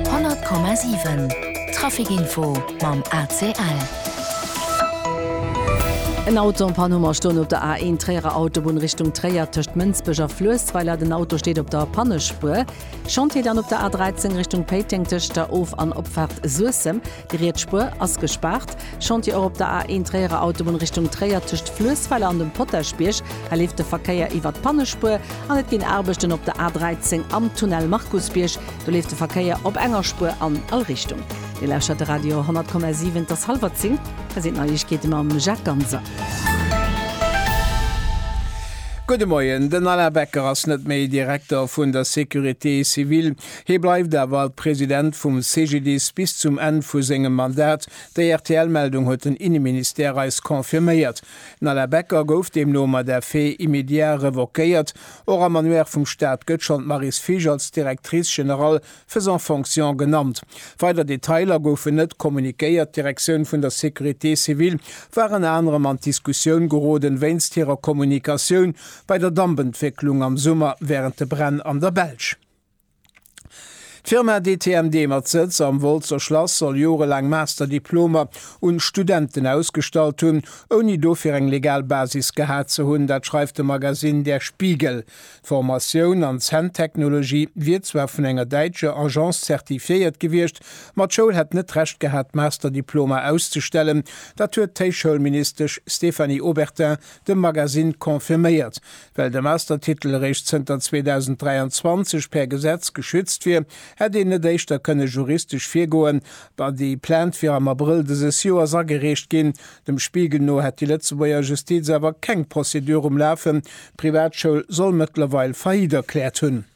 100,7 Trafic Info mam ACL. En Auto am Pann hu mer stoen op der A1 Tréierer Autobunn Richtung Tréier tëscht Mënsbech a Fluessweiler. Den Auto steet op der Pannespuer. Chantier dann op der A13 Richtung Péiteng tëscht der Of an Opfaart Suessem. Déi riets Spuer ass gespaart. Chantier och op der A1 Tréierer Autobunn Richtung Tréier tëscht Fluessweiler an dem Potaschbierg. Hei leeft de Verkéier iwwert d'Pannespuer an et ginn Aarbechten op der A13 am Tunnel Markusbierg. Do leeft de Verkéier op enger Spuer an all Richtung. Dir lauschtert de Radio 100,7. Et ass hallwer 10. Hei sinn d'Neiegkeete mam Jacques Ganser. Gudde Moien. Den Alain Becker ass net méi Direkter vun der Sécurité civile. Hie bleift awer President vum CGDIS bis zum Enn vu sengem Mandat. Déi RTL-Meldung huet den Inneministère eis confirméiert. Den Alain Becker gouf deemno mat effet immédiat revoquéiert. Och am Annuaire vum Staat gëtt schonn d'Maryse Fisch als Directrice générale faisant fonction genannt. Weider Detailer goufen net kommuniquéiert. D'Direktioun vun der Sécurité civile war ënner anerem an d'Diskussioun geroden, wéinst hirer Kommunikatioun bei der Dampentwécklung am Summer wärend de Bränn an der Belsch. D'Firma DTMD mat Sëtz am Wolzer Schlass soll jorelaang Master-Diplomer un Studenten ausgestallt hunn, ouni dofir eng legal Basis gehat ze hunn. Dat schreift de Magasinn Der Spiegel. D'Formatioun an Zänntechnologie wier zwar vun enger däitscher Agence zertifiéiert gewiescht, ma d'Schoul hätt net d'Recht gehat, d'Master-Diplomer auszestellen. Dat huet d'Héichschoulministesch Stéphanie Obertin dem Magasinn confirméiert. Well de Mastertitel eréischt zënter 2023 per Gesetz geschützt wier, hätt een net éischter kënne juristesch virgoen, wa déi Plainte wier am Abrëll dëses Joers agereecht ginn. Dem Spiegel no hätt déi Lëtzebuerger Justiz awer keng Prozedur um Lafen, d'Privatschoul soll mëttlerweil Faillite erkläert hunn.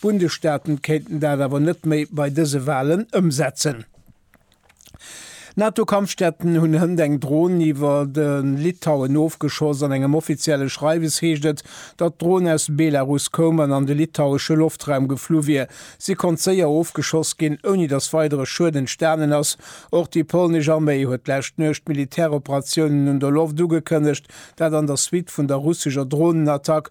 D'Bundesstaaten kéinten dat awer net méi bei dëse Walen ëmsetzen. NATO-Kampfjetten hunn hënt eng Dron iwwer de Litauen ofgeschoss. An engem offizielle Schreiwes heescht et, datt d'Dron aus Belarus koum an an de litauesche Loftraum geflu wier. Si konnt séier ofgeschoss ginn, ouni datt weidere Schued entstanen ass. Och déi polnesch Arméi huet d'lescht Nuecht Militäroperatiounen un der Loft ugekënnegt, dat an der Suite vun der russescher Dronenattack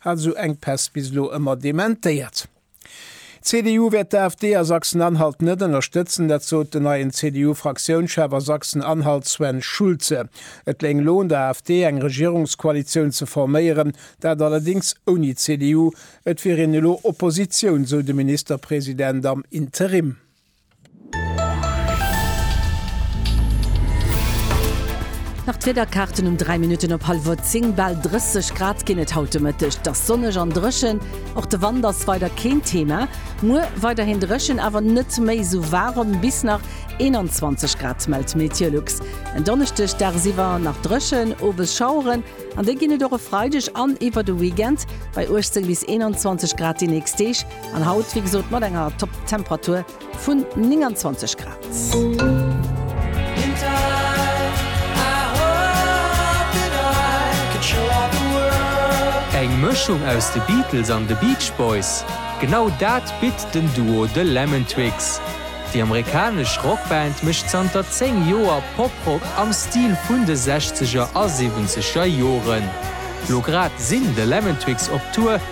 Hat esou Enkpäss bis elo ëmmer dementéiert. D'CDU wäert d'AfD a Sachsen-Anhalt net ënnerstëtzen, dat sot den neien CDU-Fraktiounschef a Sachsen-Anhalt Sven Schulze. Et léing elo un der AfD eng Regierungskoalitioun ze forméieren, dat allerdéngs ouni d'CDU. Et wier een elo Oppositioun, sou de Ministerpresident am Interim. Nach d'Wiederkaarten um 3 Minutten op hallwuer 10, Bal 30 Grad ginn et haut de Mëtteg. Et ass sonneg an dréchen. Och de Wand ass weider keen Thema. Muer weiderhin dréchen, awer net méi esou waarem, bis nach 21 Grad, mellt Meteolux. En Donneschdeg dagsiwwer nach dréchen, owes Schaueren, an déi ginn et och e Freideg an iwwer de Weekend. Bei 18 bis 21 Grad déi nächst Deeg. An haut wéi gesot mat enger Top Temperatur vun 29 Grad. Eng Mëschung aus de Beatles an de Beach Boys, genau dat bitt den Duo The Lemon Twigs. Déi amerikanesch Rockband mécht zanter 10 Joer Poprock am Stil vun de Sechzeger a Siwwenzeger Joren. Lo grad sinn The Lemon Twigs op Tour.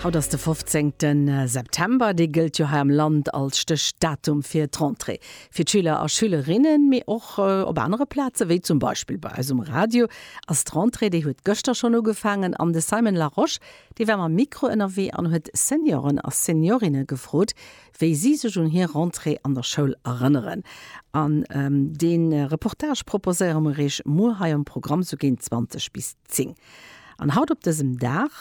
Haut ass de fofzéngte September. Dee gëllt jo hei am Land als Stéchdatum fir d'Rentrée. Fir d'Schüler a Schülerinnen, mee och op anere Plazen, wéi zum Beispill bei eis um Radio, ass d'Rentrée, déi huet gëschter schonn ugefaangen. An de Simon Larosche, dee war mam Mikro ënnerwee an huet Senioren a Seniorinne gefrot, wéi si sech un hir Rentrée an der Schoul erënneren. An dee Reportage proposéiere mer iech muer hei am Programm sou géint 20 bis. Zéng. An haut op dësem Dag,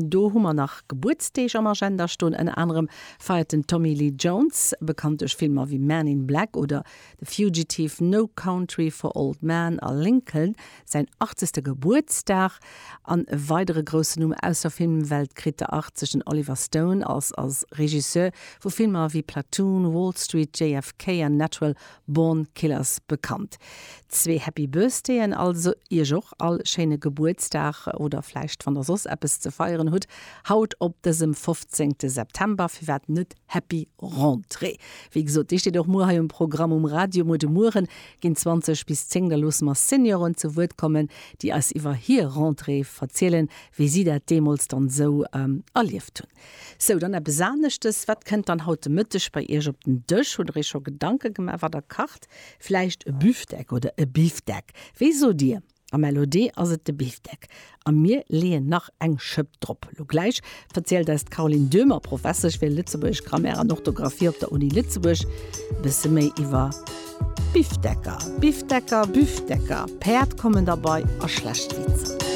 do hu mer nach Gebuertsdeeg am Agenda stoen, ënner anerem feiert den Tommy Lee Jones, bekannt duerch Filmer wéi Man in Black oder The Fugitive, No Country for Old Men a Lincoln, säin 80. Gebuertsdag. An e weidere groussen Numm aus der Filmwelt kritt de 80. Den Oliver Stone ass als Regisseur vu Filmer wéi Platoon, Wall Street, JFK an Natural Born Killers bekannt. Zwee Happy Birthdayen also, Iech och all schéine Gebuertsdag oder vläicht wann der soss eppes ze feieren hutt haut op dësem 15 September, firwat net Happy Rentrée. Wéi gesot, déi steet och muer hei um Programm um Radio. Muer de Mueren ginn 20 bis 10, da loosse mer Senioren zu Wuert kommen, déi eis iwwer hir Rentrée verzielen, wéi si dat deemools dann esou erlieft hunn. Sou, dann eppes aneschtes. Wat kënnt dann haut de Mëtteg bei Iech op den Dësch? Hutt Der Iech scho Gedanke gemaach, wat Der kacht? Vläicht e Büftek oder e Bifdeck? Wéi sot Dir? Am LOD ass et de Bifdeck. A mir leeën nach eng Schëpp drop. Lo gläich verzielt eis d'Caroline Döhmer, Professesch fir lëtzebuergesch Grammaire an Orthografie op der Uni Lëtzebuerg, e bësse méi iwwer Bifdecker, Bifdecker, Büfdecker, Päerd kommen derbei a schlecht Witzer.